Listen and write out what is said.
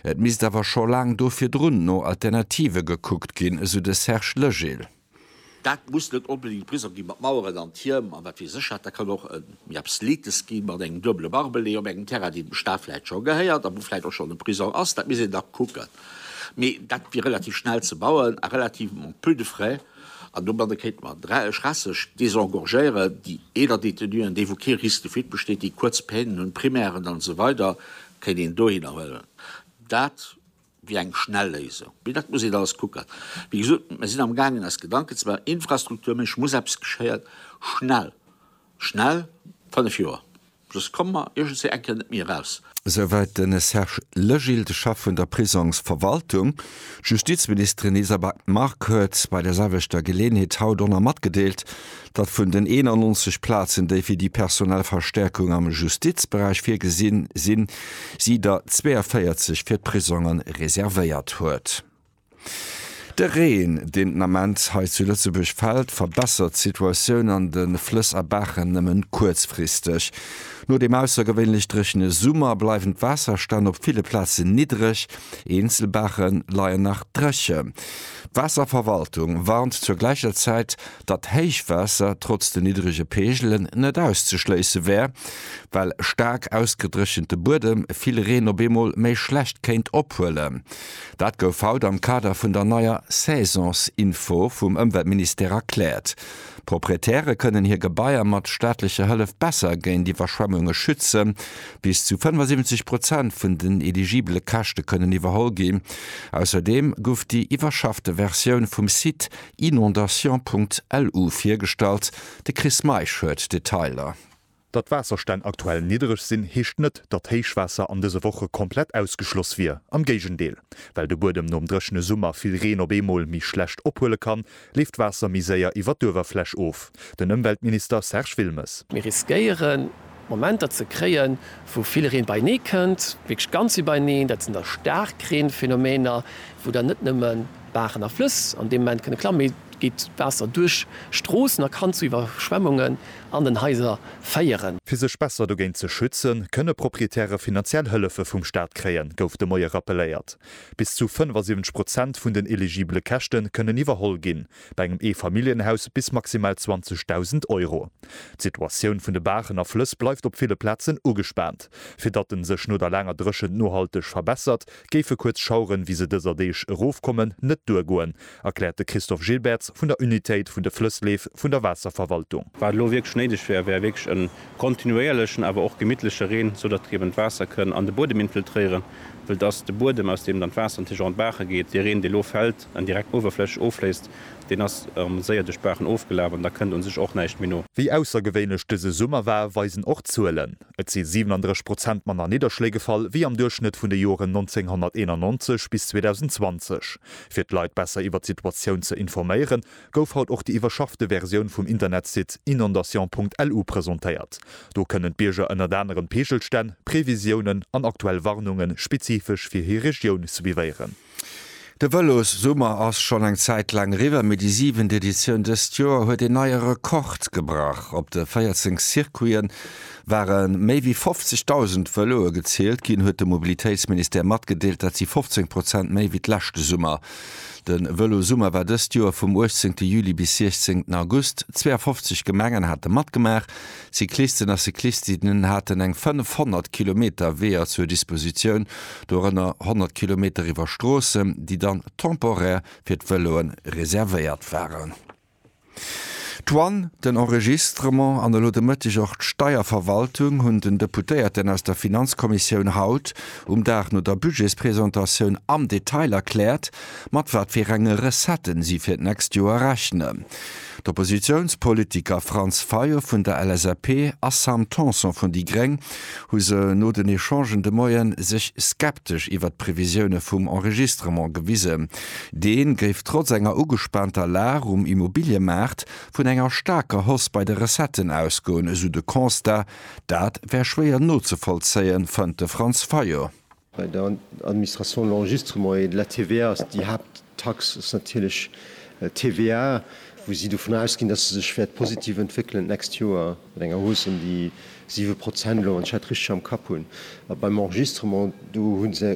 Et misst awer scho laang do virdrun no Alternative gekuckt ginn, esou de Serge Legil. Dat muss net onbedéngt Prisong gi mat Maueren an Tierm a wat weess ech wat. Dat kann och méi Absletes gi mat engem duebele Barbelé op engem Terrain, deen dem Staat vläicht scho gehéiert a wou vläicht och schonn e Prisong ass. Dat misst een da kucken. Mee dat wier relativ schnell ze bauen a relativement peu de frais. An domadde kéinte mer dräieg Rasseg désengorgéieren, déi eeler Détenuen, déi wou kee Risque de fuite besteet, déi kuerz Peinen hunn, Primären an esou weider kéint een dohinner huelen. Dat wier eng schnell Léisung. Mee dat muss een alles kucken. Wéi gesot, mer sinn am gaangen eis Gedanken ze maachen, infrastrukturméisseg muss eppes geschéien, schnell, schnell, fënnef Joer. Just komme mer iergendswéi eng Kéier net méi eraus. Souwäit de Serge Legil, de Chef vun der Prisongsverwaltung. D'Justizministerin Isabel Margue huet bei där selwechter Geleeënheet haut och nach matgedeelt, datt vun den 91 Plazen, déi fir déi personell Verstäerkung am Justizberäich virgesinn sinn, si der 42 fir d'Prisonge reservéiert huet. De Reen, deen den Ament hei zu Lëtzebuerg fält, verbessert d'Situatioun an de Flëss a Baachen nëmme kuerzfristeg. No deem aussergewéinlech dréchene Summer bleiwen d'Waasserstänn op ville Plazen niddreg, eenzel Baache leien nach dréchen. D'Waasserverwaltung warnt zur gläicher Zäit, datt Héichwaasser trotz den niddrege Peegelen net auszeschléisse wär, well staark ausgedréchente Buedem vill Reen op eemol méi schlecht kéint ophuelen. Dat gouf haut am Kader vun der neier Saisonsinfo vum Ëmweltministère erkläert. Proprietäre kënnen hir Gebaier mat staatlecher Hëllef besser géint Iwwerschwemmunge schützen. Bis zu 75 Prozent vun den eligibele Käschte kënnen iwwerholl ginn. Ausserdeem guff déi iwwerschaffte Versioun vum Site inondations.lu virgestallt. De Chris Meisch huet d'Detailer. Datt d'Waasserstänn aktuell niddereg sinn, heescht net, datt Héichwaasser an dëse Woche komplett ausgeschloss wier. Am Géigendeel. Well de Buedem nom dréchene Summer vill Reen op eemol méi schlecht ophuele kann, leeft d'Waasser méi séier iwwer d'Uewerfläch of. Den Ëmweltminister Serge Wilmes. Mir riskéiere Momenter ze kréien, wou vill Reen beienee kënnt, wierklech ganz iwwerneen. Dat sinn da Staarkreenphenomener, wou dann net nëmme Baachen a Flëss an deem Moment kënne klammen, mee et geet Waasser duerch Stroossen a kann zu Iwwerschwemmunge an den Haiser féieren. Fir sech besser dogéint ze schützen, kënne Proprietäre finanziell Hëllefe vum Staat kréien, gouf de Moie rappeléiert. Bis zu 75 Prozent vun den eligibele Käschte kënnen iwwerholl ginn, bei engem Eefamilljenhaus bis maximal 20.000 Euro. D'Situatioun vun de Baachen a Flëss bleift op ville Plazen ugespaant. Fir datt en sech no der laanger Dréchent nohalteg verbessert, géife kuerz Schaueren, wéi se dëser Deeg erofkommen, net duergoen, erkläert de Christophe Gilbertz vun der Unitéit vun de Flëssleef vun der Waasserverwaltung. Wat elo wierklech néideg wär, wär wierklech e kontinuéierlechen, awer och gemittleche Reen, sou datt eben d'Waasser kënn an de Buedem infiltréieren, wëll dass de Buedem, aus deem dann d'Waasser natierlech och an d'Baache geet, dee Reen, dee lo fält an direkt uewerflächeg offléisst, deen ass erëm séier duerch d'Baachen ofgelaf an da kënnt u sech och näischt méi no. Wéi aussergewéinlech dëse Summer war, weisen och d'Zuelen. Et si 37 Prozent manner Nidderschléi gefall wéi am Duerchschnëtt vun de Joren 1991 bis 2020. Fir d'Leit besser iwwer d'Situatioun ze informéiere gouf haut och déi iwwerschaffte Versioun vum Internetsite inondation.lu presentéiert. Do kënnen d'Bierger ënnert anerem d'Peegelstänn, Previsiounen an aktuell Warnunge spezifesch fir hir Regioun suivéieren. De Vëlossummer ass schonn eng Zäit laang eriwwer, mee déi siwent Editioun dëst Joer huet een neie Rekord gebrach. Op de 14 Circuite ware méi wéi 50.000 Vëloe gezielt ginn, huet de Mobilitéitsministère matgedeelt. Dat si 15 Prozent méi wéi d'leschte Summer. De Vëlossummer war dëst Joer vum 18 Juli bis 16 August. 52 Gemengen hate matgemaach. Cyclisten a Cyclistinnen haten eng 500 Kilometer Weeër zur Dispositioun, dorënner 100 Kilometer iwwer Stroossen, déi dann temporär fir d'Vëloe reservéiert waren. D'Douane, den Enregistrement an elo de Mëtteg och d'Steierverwaltung hunn den Deputéierten aus der Finanzkommissioun haut, um Dag no der Budgetspresentatioun, am Detail erkläert, mat wat fir enge Recetten si fir d'nächst Joer rechnen. D'Oppositiounspolitiker Franz Fayot vun der LSAP a Sam Tanson vun déi gréng hu se no den Echangen de Moie sech skeptesch iwwert d'Previsioune vum Enregistrement gewisen. Dee géif trotz enger ugespaanter Lag um Immobiliëmaart vun enger staarker Hausse bei de Recetten ausgoen, esou de Constat. Dat wär schwéier nozevollzéien, fënnt de Franz Fayot. Bei der Administration l'enregistrement et la TVA ass déi Haapttax ass natierlech d'TVA, wou si dovun ausginn, dass se sech wäert positiv entwéckelen d'nächst Joer mat enger Hausse ëm déi siwe Prozent elo, wann ech dat richteg am Kapp hunn. A beim Enregistrement, do hu se